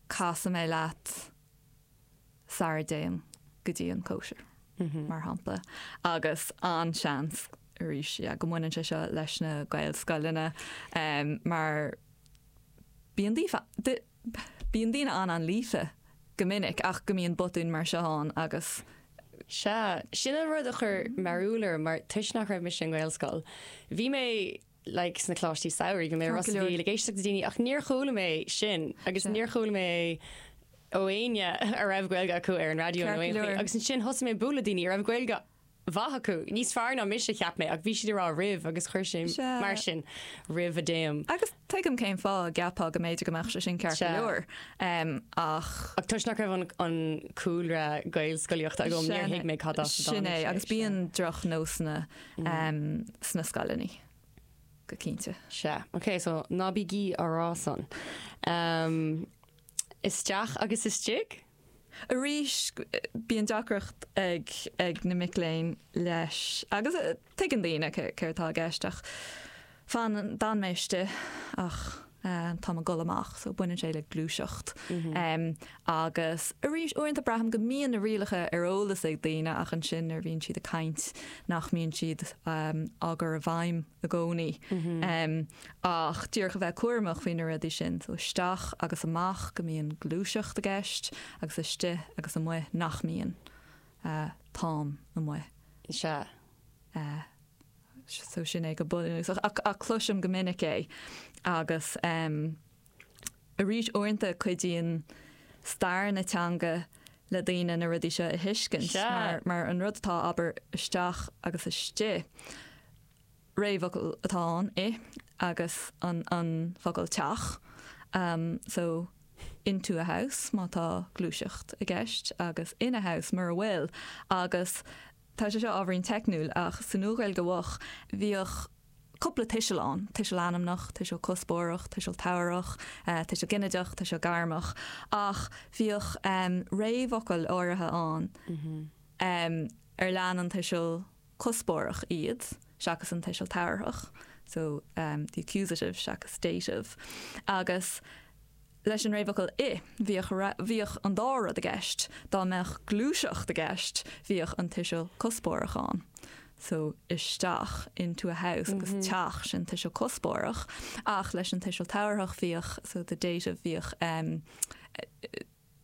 casadh mé leat sara dtéim go dtí an chóisir, mar shampla, agus an-seans arís go mbaineann sé seo leis na Gaelscoileanna mar bíonn daofa, bíonn daoine an-an-líofa go minic ach go mbíonn botúin mar seo ann agus. Sea, sin an rud a chuir mearúil orm mar toisc nach raibh mise i nGaelscoil, bhí mé. like sna coláistí samhraidh bhí mé i Ros a' Mhíl ag éisteacht le daoine ach níor chuala mé sin agus níor chuala mé ó éinne a raibh Gaeilge acu ar an raidió nó aon chaoi agus ansin thosaigh mé ag bualadh le daoine a raibh Gaeilge mhaith acu, níos fearr ná mise cheap mé ach bhí siad ag rá roimh agus chuir sé mar sin roimh a dtéim. Agus tuigim cén fáth a gceapfá go mb'fhéidir go mbeadh sé sin ceart go leor ach. Ach toisc nach raibh an cúlra Gaelscolaíochta agam níor thuig mé cad as a dtáinig sé. Sin é agus bíonn drochnósanna sna scoileanna go cinnte. Sea, ok, so ná bígí á rá san. Isteach agus istigh? Arís, bíonn deacracht ag na mic léinn leis, agus tuigeann daoine céard atá i gceist, ach Fan d'fhan mé istigh ach tá mé ag goil amach so baineann sé le gluaiseacht agus arís uaireanta braithim go mbíonn na rialacha ar eolas ag daoine ach ansin nuair a bhíonn siad ag caint nach mbíonn siad á gcur i bhfeidhm i gcónaí ach díreach a bheith cúramach faoi na rudaí sin so isteach agus amach go mbíonn gluaiseacht i gceist agus istigh agus amuigh nach mbíonn. Táim amuigh. Sea. so sin é go bunúsach ach cloisim go minic é agus em arís uaireanta cuidíonn stair na teanga le daoine na rudaí seo a thuiscint Sea! mar mar an rud atá abair isteach agus istigh réamhfhocal atá ann i agus an an focal teach em so into a house má tá gluaiseacht i gceist agus in a house mura bhfuil agus Tá sé seo ábhairín teicniúil ach sa Nua-Ghaeilge Mhoch bhíodh cúpla tuiseal ann, tuiseal ainmneach, tuiseal cuspóireach, tuiseal tabharthach, tuiseal ginideach, tuiseal gairmeach, ach bhíodh réamhfhocail áirithe ann ar lean an tuiseal cuspóireach iad seachas an tuiseal tabharthach, so the accusative seachas dative, agus Leis an réamhfhocal 'i', bhíodh raibh, bhíodh an dá rud i gceist. Dá mbeadh gluaiseacht i gceist, bhíodh an tuiseal cuspóireach ann. So, isteach, into a house, agus teach, sin tuiseal cuspóireach. Ach leis an tuiseal tabharthach bhíodh, so the dative, bhíodh eh,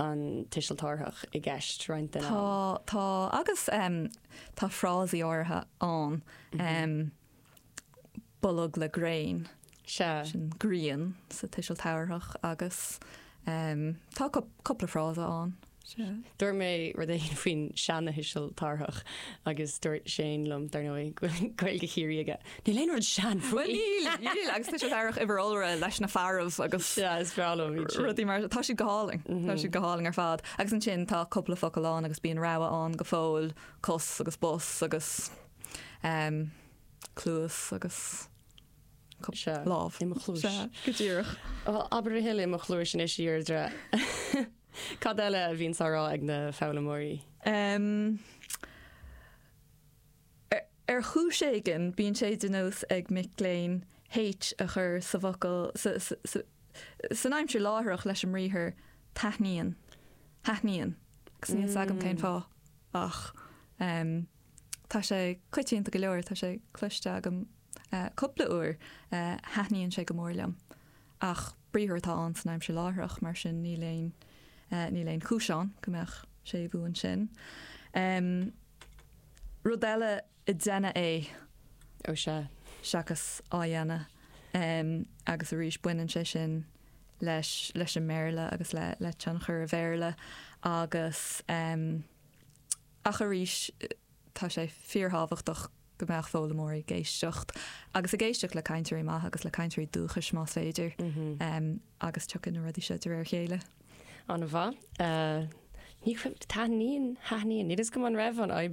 an Tuiseal Tabharthach i gceist roinnt den am. Tá, agus tá frásaí áirithe ann, bolg le gréin, sin grian sa Tuiseal Tabharthach, agus tá cúpla frása ann. Dúirt mé rud éigin faoin seanThuiseal Tabharthach agus dúirt Shane liom, dar ndóigh, go bhfuil Gaeilge Chiarraí aige. Níl aon rud sean faoi. Bhuel níl, níl agus tá siad ar an uimhir iolra leis na fearaibh agus Sea, is breá leo iad sin. rudaí mar sin. Tá siad go hálainn, tá siad go hálainn ar fad. Agus ansin tá cúpla focal ann agus bíonn rogha ann go fóill, cos agus bos agus em cluas agus Sea, lámh. I mo chluais. Sea, go díreach. Ó, abair a thuille i mo chluais anois, a Dheirdre. Cad eile a bhíonns á rá ag na foghlaimeoirí? Em Ar chúis éigin bíonn sé de nós ag mic léinn H a chur sa bhfocal san aimsir láithreach leis an mbriathar taithníonn, thaithníonn, agus níl 's agam cén fáth ach tá sé coitianta go leor, tá sé cloiste agam cúpla uair, thaithníonn sé go mór liom. Ach briathar atá ann san aimsir láithreach mar sin níl aon, níl aon chúis ann go mbeadh séimhiú ansin. rud eile ag déanamh é. Ó sea, seachas á dhéanamh em agus arís baineann sé sin leis leis an mBéarla agus le le tionchar an Bhéarla agus em ach arís tá sé fíorthábhachtach go mbeadh foghlaimeoirí ag éisteacht agus ag éisteacht le cainteoirí maithe agus le cainteoirí dúchais más féidir agus tiocfaidh na rudaí seo de réir a chéile. Ana-mhaith. Ní thaithníonn, thaithníonn. N'fheadar an raibh an fhadhb